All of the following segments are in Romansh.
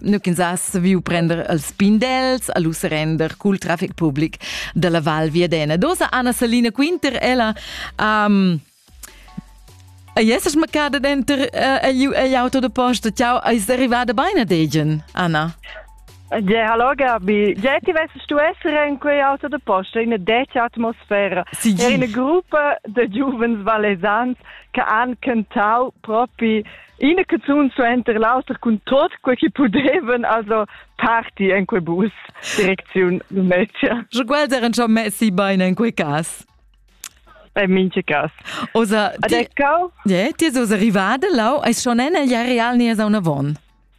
Nuch'ins ha saviu prender els pindels a lu serender cul traffic public dalla Val Viadena. Dosa Anna Salina Quinter, ella um, Ei esses maccada denter ei auto de posta, ciao, eis arrivada beina degen, Anna? Ja, hallo Gabi. Ja, ti wessest du essere in quei auto de posta, in detta atmosfera. Sì, Era una gruppa de giovens valesans che han cantau propi ina canzun suenter l'auter cun tot quei che pudevan also party en quei bus direcziun Lumezia. Je guarder en messi bein en quei cas. En minche cas. Osa, ti, Adeccau? Yeah, ti osa arrivada lau, eis schon en el ja real ne a una von.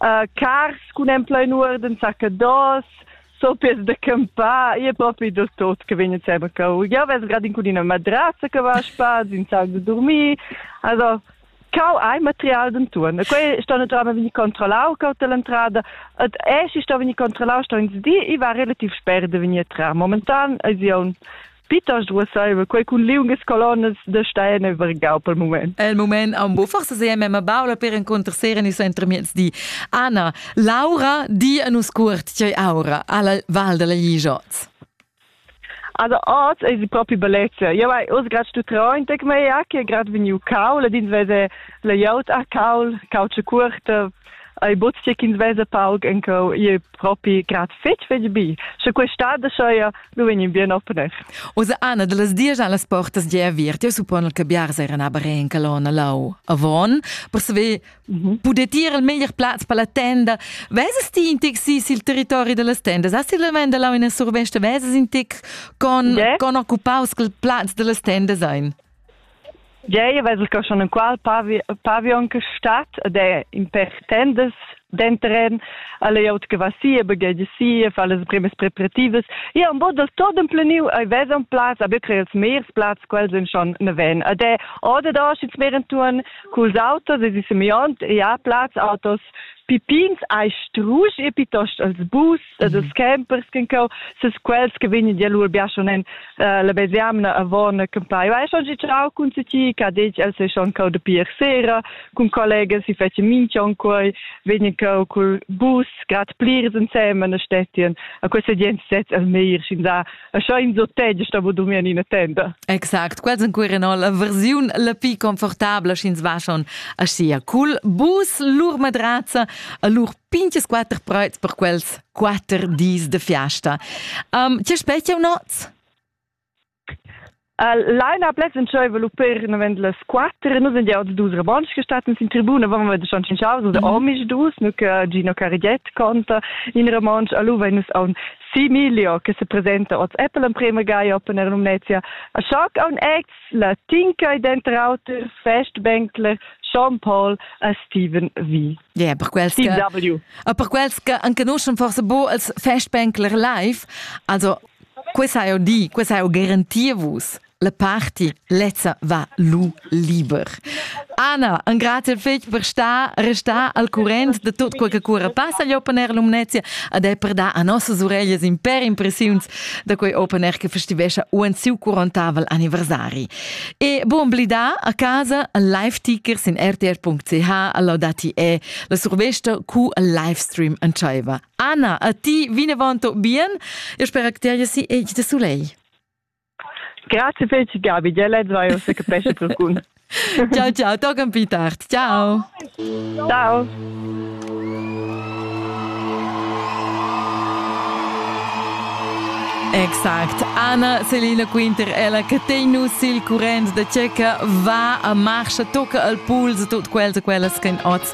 uh, cars cun en plein uorden saccados, sopies de campar, e propi del tot che vegn seba cau. Ja ves grad in cudina madraza che va spaz, in sac de dormir. Also cau hai material den turn. E quei sto naturalmente veni controllau cau dell'entrada et es sto veni controllau sto ins di i va relativ sper de veni a trar momentan es un Piitost duessaiva quei cun liungas colonnas da stein e vargau pel mument. El mument ha un bu forse sei mema baula per encontrer sera ni entremiezdi. Anna, Laura di a nus cuort tgei aura alla Val della Ligiot. Also oz è sie proprio bellezza. Io vai oz grad stu train tec mei a che grad vegniu caul ed ins vese la iaut a caul, cauce curta, ai bozzi ch'ins vesa pauc enco ie propi grad fetg fetg bi. Sche quest'ada schaia nu vegnin bien opener. Osa Anna de las dies las portas di aviert, io suppon che biars eran aber in colonna lau avon, per saver mhm. poder tier il meglier plaz per la tenda. Veses ti in tic si sil territori de las tendas? Has ti lavenda lau in survesta? Veses in tic con, yeah. con occupaus col plaz de las tendas ein? Tgei vesas co schon enqual pavion che stat ed è in pèr tendas denteren alla glieud che va sia baghegia sia fa las primas preparativas io un bod dal tot empleniu ei vesan plaz a betri els mers plaz quels en schon neven ed è oder da schits mer entun culs autos es i semiont ja plaz autos pipins ai strusch e pitost als bus das campers kin co ses quels che vegni di lur biaschon en la besiamna avon campai vai schon gi ciao cun ti ca dec el se schon co de pier sera cun collegas si fece minchon quei vegni co cul bus grad plirs insemen stettien a queste gent set el meir sin da E scha ins otg stavo durmir in ina tenda. Exact, quels en cuir en la versiun la pi confortabla sch'ins va schon a sia cul bus lur madrazza a lur pinches quatter preuts per quels quatter dis de fiasta. Um, ti spettia un oz? Laila Blessenschövel u per navend las quatter e nus en jau dus rabons che stat sin tribuna van wir schon cin chaus da omis dus nu che Gino Carigiet conta in rabons a luva nus a un Similio che se presenta oz Apple en prema gai open er Numnetia a shock on acts la tinca e denter auter festbänkler Jean Paul a Steven V. Yeah, per quels Steve que, W. Ah, per quels che anche noi schon forse bo als Festbänkler live, also Questa ha eu di, questa ha eu garantir vus. La party lezza va lu liber. Anna, un grazie fetg per star, restar al current de tot quel che cura passa gli open air Lumnezia ad è per dar a nossas ureglias in per impressiuns da quei open air che festivescia uan siu curontavel anniversari. E buon blidà a casa al live tickers in rtr.ch all'audati e la survesta cu al live stream antschaiva. Anna, a ti vinavant bien. Eu spera che ti si egl de soleil. Grazie fece Gabi, già lezza io se capesce qualcun. ciao ciao, toccan più tardi. Ciao. Ciao. Exact. Anna Selina Quinter, ella che tenu sil current da Ceca, va a marcha, tocca al puls tut quels e quellas che oz